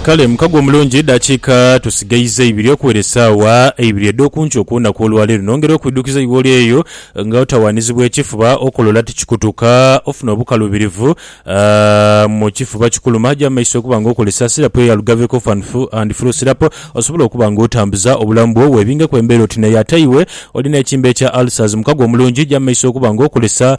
Kale mukago omulungi, edhakiika tusigaiza ibiri okuwera esaawa eibiri edh'okunkyo okw'olunaku olwaleero. Nongera okwidhukiza iwe oli eyo nga otawaanizibwa ekifuba, okola ol ati kikutuka, ofuna obukaluubirivu mu kifuba kikuluma, ja mu maiso okuba nga okozesa Syrup eya Lugave Cough and Flu Syrup osobole okuba nga otambuza obulamu bwo. Webingeku embeera oti nayo ate iwe oli n'ekimbe kya ulcers, mukago omulungi ja mu maiso okuba nga okozesa.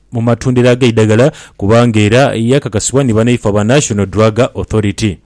mu matundiro ag'eidagala kubanga era yakakasibwa ni banaifo aba National Drug Authority.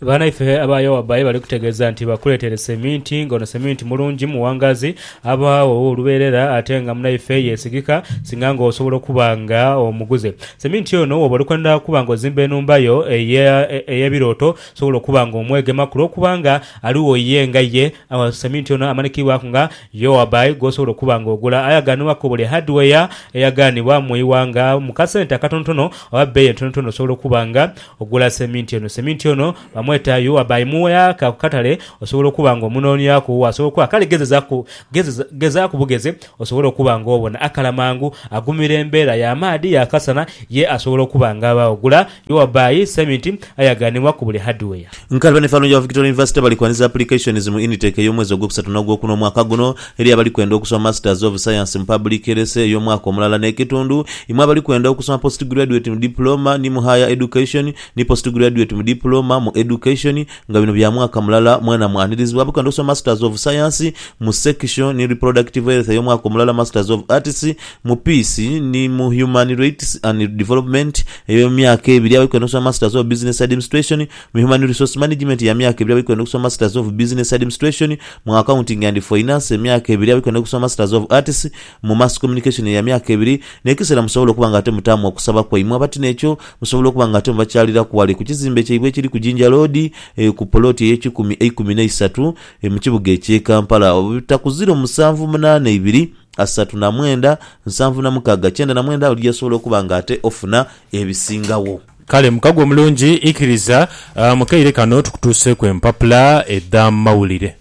Banaife aba Yowabai bali kutegeeza nti bakuleetere seminti ng'ono seminti mulungi muwangaazi aba ow'olubeerera ate nga munaife yeesigika singa ng'osobola okuba nga omuguze seminti ono wooba oli kwenda okuba ng'ozimba enhumba yo ey'ebirooto sobola okuba ng'omwegemaku lw'okuba nga aligho ye nga ye Awo Sementi ono amanikibwaku nga Yoabai gw'osobola okuba nga ogula aye agaanibwaku buli hardware eyagaanibwa mu ighanga mu kasente akatonotono oba bbeeyi entonotono osobola okuba nga ogula Sementi ono. Sementi ono bamweta Yoabai. Mu yaaka ku katale osobola okuba nga omunoonyaku w'asobola okuba. Kale gezezaku, gezeza, gezaaku bugeze osobole okuba nga obona akala mangu agumira embeera y'amaadhi y'akasana ye asobola okuba nga aba ogula. Iwa by, Semiti ayaganibwa ku buli hardware. Nkalaba ne Falunjowa Victoria University bali kwanhiza applications mu Unitec ey'omwezi ogwokusatu n'ogwokuna omwaka guno eri abali kwenda okusoma Masters of Science mu Public Health ey'omwaka omulala n'ekitundu, imwe abali kwenda okusoma Postgraduate mu Diploma ni mu Higher Education ni Postgraduate mu Diploma mu Education nga bino bya mwaka mulala mwena mwanhirizibwa abali kwenda okusoma Masters of Science mu Sexual ni Reproductive Health ey'omwaka omulala Masters of Arts mu Peace ni mu Human Rights and Development eyo myaka ebiri agho kwenda okusoma Masters of Business Admstration, mu Human Resource Management ya myaka ebiri agho kwenda okusoma Masters of Business Admstration, mu Accounting and Finance emyaka ebiri agho kwenda okusoma Masters of Arts, mu Mass Communication ya myaka ebiri, n'ekiseera musobola okuba nga ate mutaamu okusaba kwaimwe abati n'ekyo musobola okuba nga ate mubakyaliraku ghale ku kizimbe kyaibwe ekiri ku Jinja Road ku poloti ey'ekikumi eikumi n'eisatu mu kibuga eky'e Kampala obutakuzira omusanvu munaana ibiri. asatu na mwenda, nsanvu na mukaaga, kyenda na mwenda, oli yasobola okuba nga ate ofuna ebisingagho. Kale mukago omulungi, ikiriza mu kaire kano tukutuuseeku empapula edh'amawulire.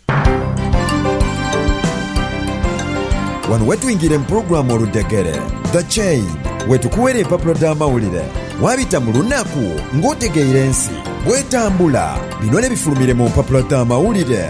Wano wetwingira mu pulogulaamu Oludhegere, The Chain, wetukuwera empapula dh'amawulire waabita mu lunaku ng'otegeire ensi bw'etambula. Bino nebifulumire mu mpapula dh'amawulire.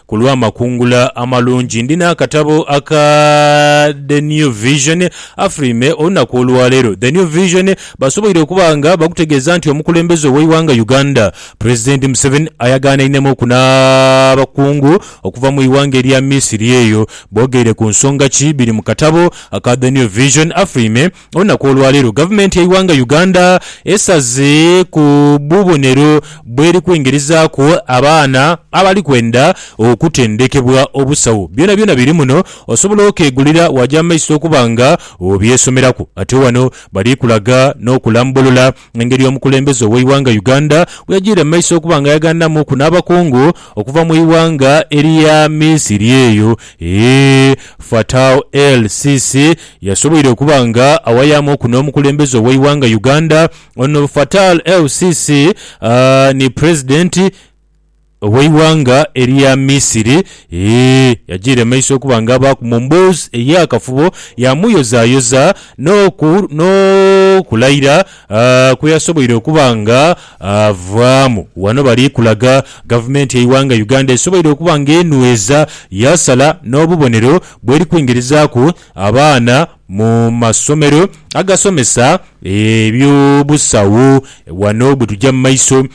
Ku lw'amakungula amalungi, ndi n'akatabo aka The New Vision. Afrime olunaku olwaleero, The New Vision basoboire okuba nga bakutegeeza nti omukulembeze ow'eighanga Uganda, President Museveni ayagaanainemuuku n'abakungu okuva mu ighanga erya Misiri eyo. Boogeire ku nsonga ki biri mu katabo aka The New Vision, Afrime Olunaku olwaleero gavumenti yaiwanga Uganda esaze ku bubonero bweri kwingirizaaku abaana abali kwenda okutendekebwa obusawo. Byonabyona biri muno osobola okegulira waja mumaiso okuba nga obyesomeraku. Ate wano bali kulaga nokulambulula Engeri omukulembeze ow'eighanga Uganda bweyagiire mu maiso okuba nga yaghandamuuku n'abakungu okuva mu ighanga erya Misiri eyo ee Fattau El Sisi yasoboire okuba nga awayamuuku n'omukulembeze ow'eighanga Uganda. Ono Fattau El Sisi ni Pulezidenti. Ow'eighanga erya Misiri yajiira emaiso okuba nga abaaku mu mboozi ey'akafubo, yaamuyozayoza n'okulaira kwe yasoboire okuba nga avaamu. Ghano bali kulaga Gavumenti y'eighanga Uganda esoboire okuba nga enhweza, yaasala n'obubonero bw'eri kwingirizaaku abaana mu masomero agasomesa eby'obusawo. Ghano bwe tuja mu maiso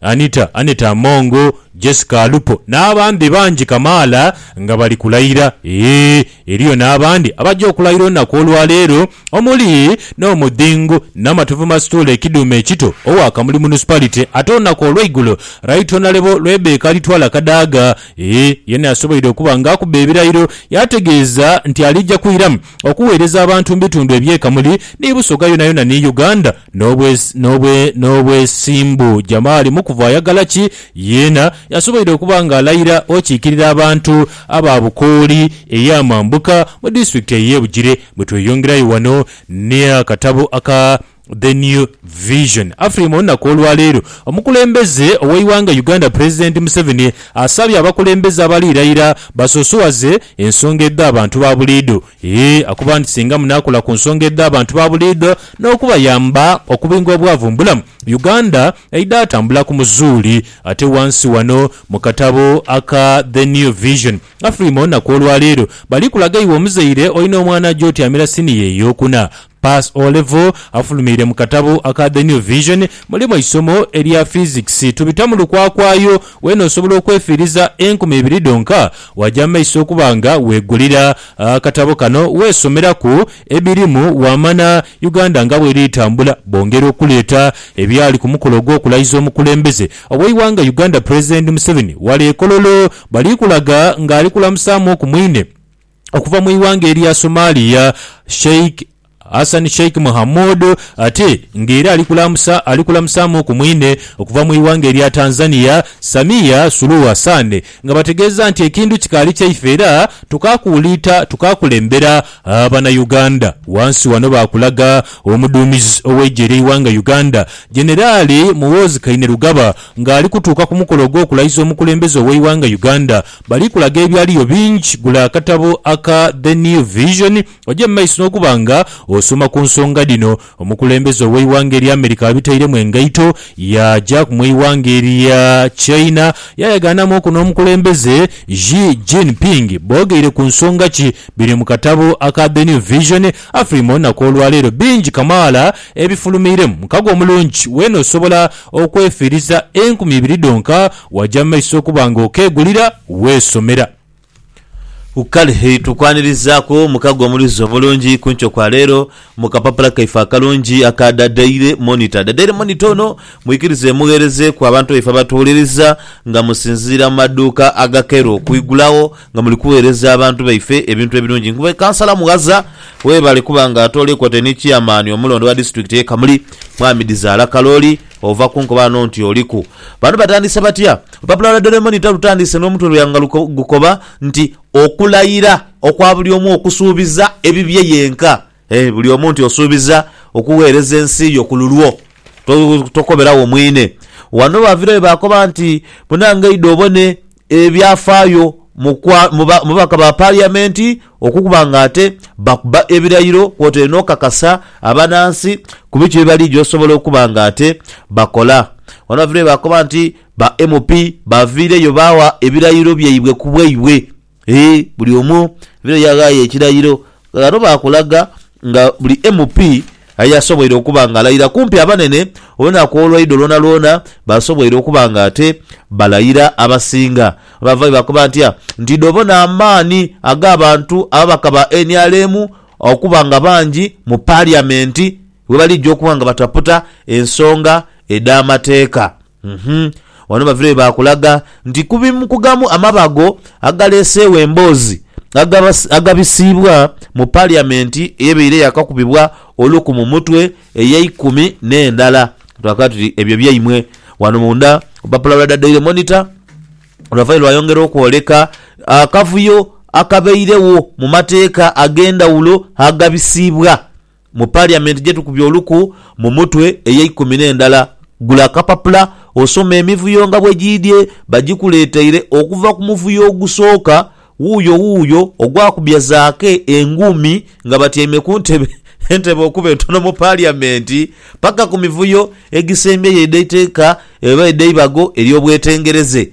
Anita, Annet Among, Jessica Alupo n'abandi bangi kamaala nga bali kulayira. Eeh, eriyo n'abandi abaja okulayira olunaku olwaleero omuli n'Omudhingu Namatovu Mastuule Kidhume Ekito owa Kamuli Municipality ate olunaku olweigulo Right Honourable Rebecca Litwala Kadaga eeh yena yasoboire okuba nga akuba ebirayiro yategeeza nti alija kwiramu okuweereza abantu mu bitundu ebye Kamuli ni Busoga yonayona ni Uganda N'obwesimbu Jamali mu kuva ayagala ki yeena, yasoboire okuba ng'alayira okiikirira abantu aba Bukooli ey'amambuka mu disitulikiti ey'e Bugiri. Bwe tweyongerayo wano n'akatabo aka The New Vision Afrima olunaku olwaleero, omukulembeze ow'eighanga Uganda Pulezidenti Museveni asabye abakulembeze abaliirayira basosowaze ensonga edh'abantu ba buliidho Yee, akuba nti singa munaakola ku nsonga edh'abantu ba buliidho n'okubayamba okubinga obwavu mu bulamu, Uganda eidha atambula ku muzuuli. Ate ghansi ghano mu katabo aka The New Vision, Afrima onaku olwaleero bali kulaga iwe omuzaire olina omwana aja otyamira siniya ey'okuna, Pass O Level afulumiire mu katabo aka The New Vision mulimu eisomo erya Physics. Tubita mu lukwakwayo weena osobola okwefiiriza enkumi ibiri dhonka waaja mu maiso okuba nga weegulira akatabo kano weesomeraku ebirimu waamana Uganda nga bweri etambula bongera okuleeta ebyali ku mukolo ogw'okulayiza omukulembeze ow'eighanga Uganda Pulezidenti Museveni wale e Kololo bali kulaga ng'ali kulamusaamuku mwine Okuva mu ighanga erya Somalia, Sheikh Hassan Sheikh Mohamud ate nga era ali kulamusa ali kulamusaamuuku mwine okuva mu ighanga erya Tanzania, Samia Suluhu Hassan nga bategeeza nti ekintu kikaali kyaife era tukaakuwuliita tukaakulembera Banauganda. Wansi wano baakulaga omuduumizi ow'eigye ly'eighanga Uganda, Generali Muhoozi Kainerugaba ng'ali kutuuka ku mukolo ogw'okulayiza omukulembeze ow'eighanga Uganda, Bali kulaga ebyaliyo bingi, gula akatabo aka The New Vision oje mu maiso n'okuba nga osoma ku nsonga dhino. Omukulembeze ow'eighanga erya America abitairemu engaito, yaajaku mu eighanga erya China yaayagaanamwoku n'omukulembeze Xi Jinping. Boogeire ku nsonga ki? Biri mu katabo aka The New Vision. Afiri mu lunaku olwaleero bingi kamaala ebifulumiiremu. Mukago omulungi weene osobola okwefiiriza enkumi ibiri dhonka Waja mu maiso okuba nga okeegulira weesomera. Kale tukwanirizaku mukago omuluzi omulungi kunkyo kwa leero mu kapapula kaife akalungi aka Da Daily Monitor. Da Daily Monitor ono mwikirize mugheerezeeku abantu baife abatuwuliriza nga musinziira mu maduuka agakeera okwigulagho nga muli kuweereza abantu baife ebintu ebirungi. Nkuba Kansala Mughaza webale kuba nga atooleku ate ni Chairman omulondo wa Disitulikiti ye Kamuli Mwami Dizaala Kalooli. Ova ku nkoba ano nti oliku. Bano batandise batya? Olupapula lwa Doraemon talutandise n'omutwe lwe nga gukoba nti Okulayira okwa buli omu okusuubiza ebibye yenka. Ee, buli omu nti osuubiza okugheereza ensi yo ku lulwo. To, tokoberagho mwine. Wano baavirayo baakoba nti, Munange, idha obone Ebyafaayo mu babaka ba Paliamenti okukuba nga ate bakuba ebirayiro kwotaire n'okukakasa abanansi ku biki bye baligya osobola okuba nga ate bakola. Wano baviireyo baakoba nti ba MP baviireyo baagha ebirayiro byaibwe ku bwaibwe. Eeh buli omu aviireyo yaghaayo ekirayiro Ghano baakulaga nga buli MP aye asoboire okuba nga alayira kumpi abanene olunaku olwaidho lwonalwona basoboire okuba nga ate balayira abasinga. Baavayo bakoba nti nti idho bona amaani ag'abantu ababaka ba nrm okuba nga bangi mu Parliament bwebalijja okuba nga bataputa ensonga edh'amateeka. Uhmm wano bavire we baakulaga nti ku bimu ku gamu amabago agaleeseegho emboozi agabisiibwa mu Paliyamenti eyebaire yaakakubibwa oluku mu mutwe ey'eikumi n'endala. Twakala tuti ebyo byaimwe. Wano munda olupapula lwa The Daily Monitor lwavayo lwayongera okwoleka akavuyo akabairegho mu mateeka ag'endhawulo agabisiibwa Mu Parliament gye tukubye oluku mu mutwe ey'eikumi n'endala. Gula akapapula osome emivuyo nga bwe giidhye. Bagikuleeteire okuva ku muvuyo ogusooka, wuuyo wuuyo ogwakubya zaake engumi nga batyaime ku ntebe entebe okuba entono mu Parliament, paka ku mivuyo egisembyeyo edh'eiteeka oba edh'eibago ery'obwetengereze.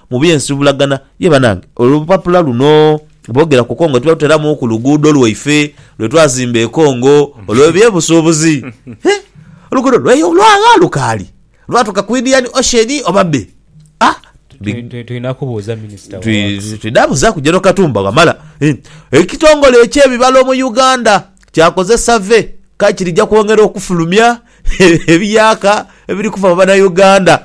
Mu by'ensuubulagana, ye banange, olupapula luno boogera ku Congo tuba tuteramuuku luguudo lwaife lwe twazimba e Congo olw'ebyebusuubuzi. He! Oluguudo lwayo olwagha lukaali lwatuuka ku Indian Ocean oba bbe? Ah! Big. Tulina kubuuza Minisita wa Works. Twidha buzaaku General Katumba Wamala. Ekitongole eky'ebibalo mu Uganda kyakoze survey kale kirija kwongera okufulumya Ebiyaaka ebiri kufa mu Banauganda.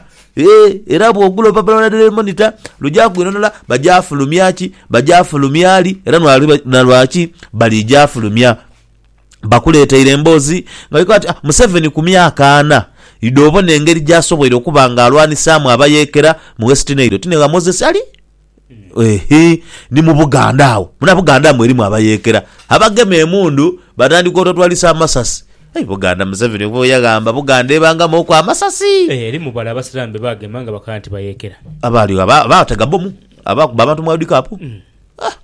Era bwogula olupapula lwa Daily Monitor lugya kwinonera bagyafulumya ki, bagyafulumya li era na lwaki bali gyafulumya. Bakuleteire emboozi nga dhikoba nti Museveni ku myaka ana idhi obona engeri gyasoboire okuba nga alwanisaamu abayeekera mu West Nile oti ni gha Moses Ali? Eehee ni mu Buganda agho. Muna Buganda mwerimu abayeekera, abagema emundu batandika otwatwalisa amasasi. Aye Buganda Museveni oba oyo yaghamba Buganda ebangamauku amasasi! Eeh erimu bale abasilamu be bagema nga bakola nti bayeekera. Abaali agho abaatega bbomu, abaakuba abantu mu World Cup. Aah!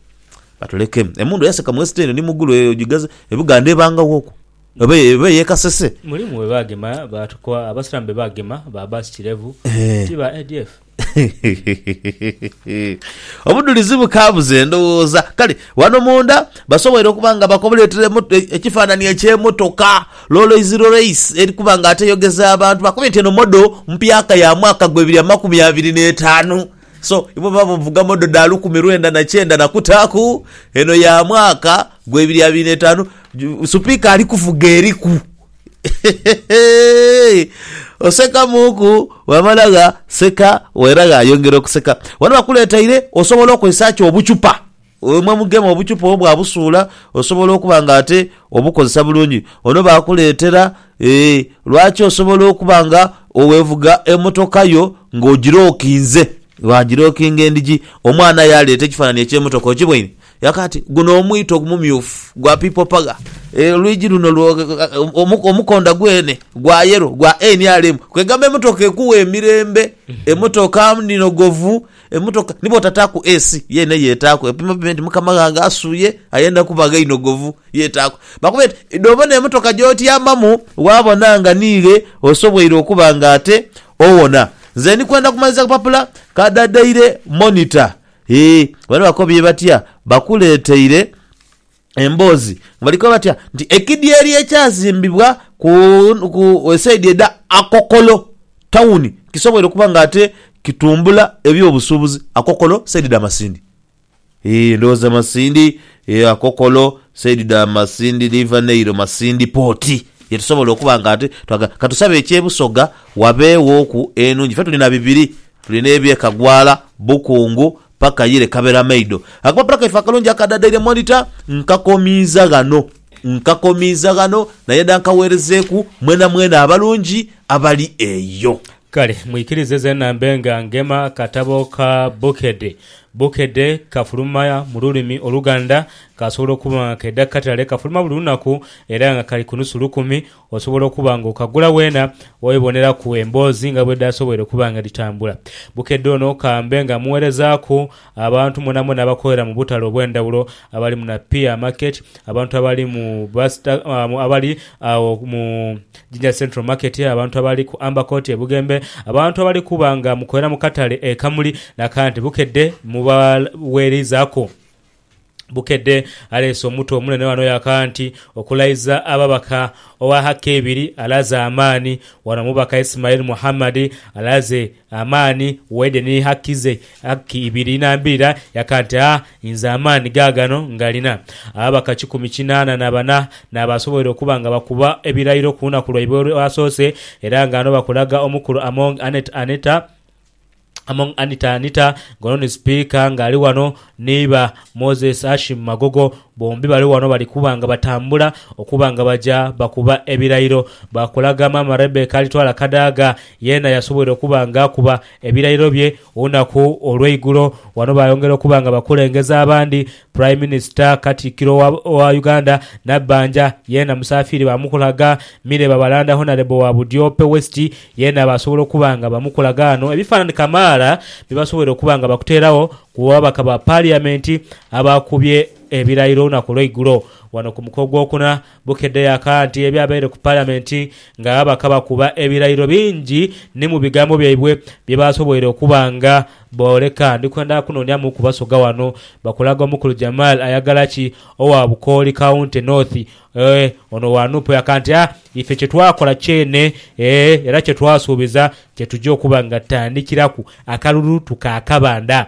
Batulekemu. Emundu eyaseka mu West End ni mu Gulu eyo ogigaze, e Buganda ebangaghoku? Oba e, oba ey'e Kasese? Mulimu be baagema baatukoa, abasilamu be baagema ba Abbas Kirevu, Eeh. ti ba ADF? Obudhulizi bukaabuza endhoghoza. Kale ghano munda basoboire okuba nga bakoletere ekifaananhi eky'emotoka Rolls Royce eri kuba nga ate eyogeza abantu. Bakubwire nti eno modo mpyaka ya mwaka gwa ebiri amakumi abiri n'etaanu. So, ibo baba bavuga modo dha lukumi lwenda na kyenda na kutaaku, eno ya mwaka gwa ebiri abiri n'etaanu. Supiika ali kuvuga eriku Oseka muuku bw'amala gh'aseka era gh'ayongera okuseka. Ghano bakuleeteire osobola okozesa ki obucupa. Wemwe mugema obucupa obwo bwabusuula osobola okuba nga ate obukozesa bulungi. Ono baakuleetera ee lwaki osobola okuba nga bwevuga emotoka yo ng'ogilokinze, bwagilokinga endhigi. Omwana aye aleeta ekifaananhi eky'emotoka, okibwine? Yaka ati, Guno omwito omumyufu gwa People Power. Olwigi luno lwo, omukonda gwene gwa yellow gwa nrm. Kwegamba emotoka ekuwa emirembe, emotoka ndhinogovu, emotoka ni bwotataaku AC yeena eyo etaaku. Epima pime nti mukama ghange asuye ayenda kuba ghe inogovu, yo etaaku. Bakube nti dhobona emotoka gyotyamamu waabona nga ni ghe osobwoire okuba nga ate owona. Nze ndi kwenda kumaliza kapapula ka The Daily Monitor. Hii, bano bakobye batya? Bakuleeteire emboozi nga bali koba batya nti ekidyeeri ekyazimbibwa ku, ku esaidi edha Akokolo tawuni kisoboire okuba nga ate kitumbula eby'obusuubuzi. Akokolo saidi dha Masindi. Hii, ndhowooza Masindi, hee, Akokolo saidi dha Masindi, River Nail, Masindi Port ye tusobola okuba nga ate twagala. Ka tusabe eky'e Busoga wabeewooku enhungi. Ffe tuli na bibiri, Tuli n'ebye kagwala, bukungu, paka yire kaberamaido. Akapapula kaife akalungi akadadaire Monitor nkakomiiza ghano. Nkakomiiza ghano nayenda nkaweerezeeku mwenamwena abalungi abali eyo. Kale mwikirize zeena mbe nga ngema akatabo ka Bukedde. Bukedde kafuluma mu lulimi Oluganda. Kasobola okuba nga kaidha ku katale. Kafuluma buli lunaku era nga kali ku nusu lukumi. Osobola okuba nga okagula weena oweboneraku emboozi nga bwedhasoboire okuba nga dhitambula. Bukedde ono kambe nga muwerezaaku abantu mwonamwona abakolera mu butale obwendhawulo abali mu Napier Market, abantu abali mu Buster abali agho mu Jinja Central Market, abantu abali ku Amber Court e Bugembe, abantu abali kuba nga mukolera mu katale e Kamuli na Kante Bukedde mubawerizaaku. Bukedde aleese omutu omunene wano yaka nti okulaiza ababaka owa hakka ebiri alaze amaani wano omubaka Ismail Muhammad alaze amaani waide ni hakki ze hakki ibiri inambirira yaka nti a inze amaani gaagano ngalina. Ababaka kikumi kinaana na bana n'abasoboire okuba nga bakuba ebirayiro ku lunaku lwaibwe olwasoose era nga ano bakulaga omukulu Among Annet Anita, Among Anita Anita nga ono ni sipiika nga ali wano neiba Moses Ashim Magogo bombi bali wano bali kuba nga batambula okuba nga baja bakuba ebirayiro bakulaga maama Rebecca Alitwala Kadaga yeena yasobweire okuba nga akuba ebirayiro bye olunaku olweigulo wano bayongera okuba nga bakulengeza abandi Prime Minister Katikkiro wa Uganda Nabbanja yeena musaafiire baamukulaga Mire Babalanda Honourable wa Budyope West yeena baasobola okuba nga bamukulaga ghano ebifaanani kamaala bye basoboire okuba nga bakuteeragho ku babaka ba Parliament abaakubye ebirayiro olunaku olweigulo ghano ku muko ogwokuna Bukedha yaka nti ebyabaire ku Palamenti ng'ababaka bakuba ebirayiro bingi ni mu bigambo byaibwe bye baasoboire okuba nga booleka. Ndi kwenda kunoonyamu ku Basoga wano bakulaga omukulu Jamal Ayagalaki owa Bukooli County North. Eeh, ono owa nup yaka nti, Ah, ife kye twakola kyene, eeh, era kye twasuubiza kye tuja okuba nga tutandikiraku akalulu tukaakabanda.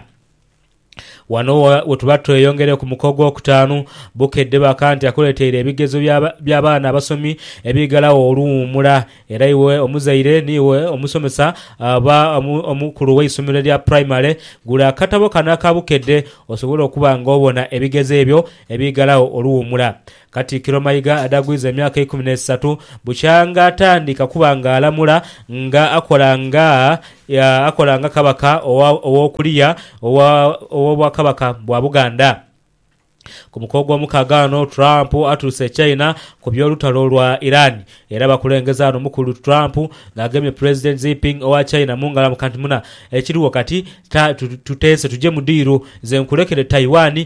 Ghano we tuba tweyongere ku muko ogwokutaanu. Bukedde bakanti akuleteire ebigezo bya baana abasomi ebiigalagho oluwuumula. Era iwe omuzaire ni iwe omusomesa oba omukulu w'eisomero erya puraimale, gula akatabo kano aka Bukedde osobole okuba ng'obona ebigezo ebyo ebiigalagho oluwuumula. Katikkiro Mayiga adagwiza emyaka eikumi n'esatu bukyanga atandika okuba nga alamula nga akola nga akola nga Kabaka ow'okuliya ow'Obwakabaka bwa Buganda. Ku muko ogw'omukaaga ghano Trump atuuse e China ku by'olutalo lwa Iran era abakulengeze ghano Mukulu Trump ng'agemye Pulezidenti Xiping owa China mu ngalo amukanti, Muna, ekiriwo kati tuteese tuje mu diiru, nze nkulekere Taiwan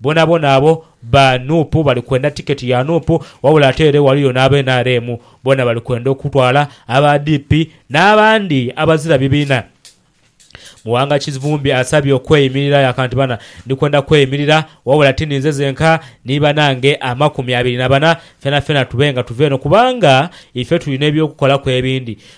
Bonabona abo ba nup bali kwenda ticket ya nup wabula ate ere waliyo n'aba nrm bona bali kwenda okutwala aba DP n'abandi abazira bibiina. Muwanga Kivumbi asabye okweyimirira yaka nti bana ndi kwenda kweyimirira wabula ti ninze zenka ni banange amakumi abiri na bana fenafena tube nga tuva eno kubanga ife tulina eby'okukolaku ebindi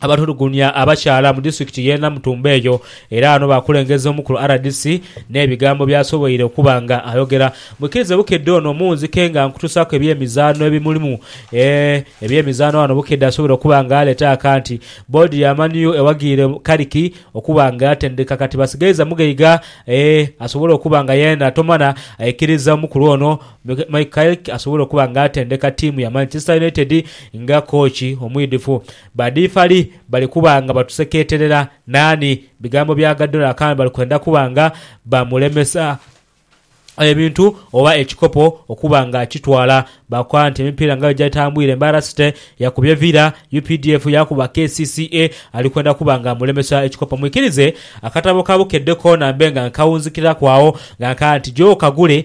abatulugunya abakyala mu disitulikiti y'e Namutumba eyo era ghano baakulengeza omu ku rdc n'ebigambo by'asoboire okuba nga ayogera. Mwikirize Bukedde ono omuwunzike nga nkutuusaaku ebyemizaano ebimulimu. Ebyemizaano ghano Bukedde asoboire okuba nga aleeta akanti boodi ya Man U ewagiire Kariki okuba nga yatendeka kati basigaiza Mugaiga asobole okuba nga yena Tomana aikiriza omukulu ono. Mike Carrick asobola okuba nga atendeka ttiimu ya Manchester United nga kooki omwidhifu. Ba difali bali kuba nga batusekeeterera naani? Bigambo bya Guardiola akambe bali kwenda kuba nga bamulemesa ebintu oba ekikopo okuba nga akitwala. Baakoba nti emipiira nga bwe gyatambwire, Mbarara City yakubye Villa, updf yaakuba kcca, ali kwenda kuba nga amulemesa ekikopo. Mwikirize akatabo ka Bukedde koona mbe nga nkawunzikiraku agho nga nkaagha nti gyoka gule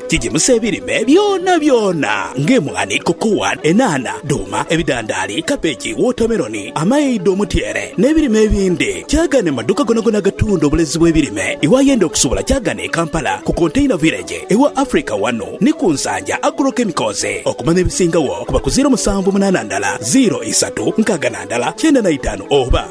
Gigimusa ebirime byonabyona ng'emwaani, kokowa, enhaanha, dhuuma, ebidhandaali, kabeji, wootameroni, amaidho, omutyeere n'ebirime ebindi. Kyaagane mu madhuuka gonagona agatunda obulezi bw'ebirime. Iwayenda okusobola kyaagane e Kampala ku Container Village ewa Africa ghano ni ku Nsanja Agro Chemicals. Okumanya ebisingagho kuba ku ziiro musanvu munaana ndala ziiro isatu nkaaga na ndala kyenda na itaanu oba.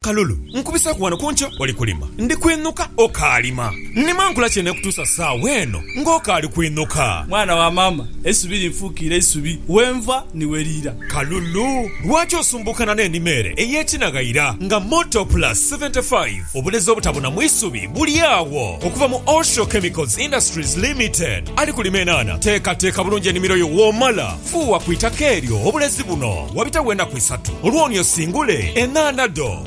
Kalulu, nkubisaaku ghano ku nkyo oli kulima. Ndi kwinhuka okaalima. Nnima nkola ki eneekutuusa saagho eno ng'okaali kwinhuka? Mwana wa maama, eisubi linfuukiire isubi, we nva ni we liira. Kalulu, lwaki osumbuukana n'enima ere ey'ekinaghaira nga Motor Plus 75? Obulezi obutabuna mu isubi buli agho. Okuva mu Osho Chemicals Industries Limited, ali kulima enaana. Teekateeka bulungi enimiro yo w'omala fuuwa ku itaka eryo obulezi buno. Wabitagho enaku isatu olwo ni osingule enaana dho.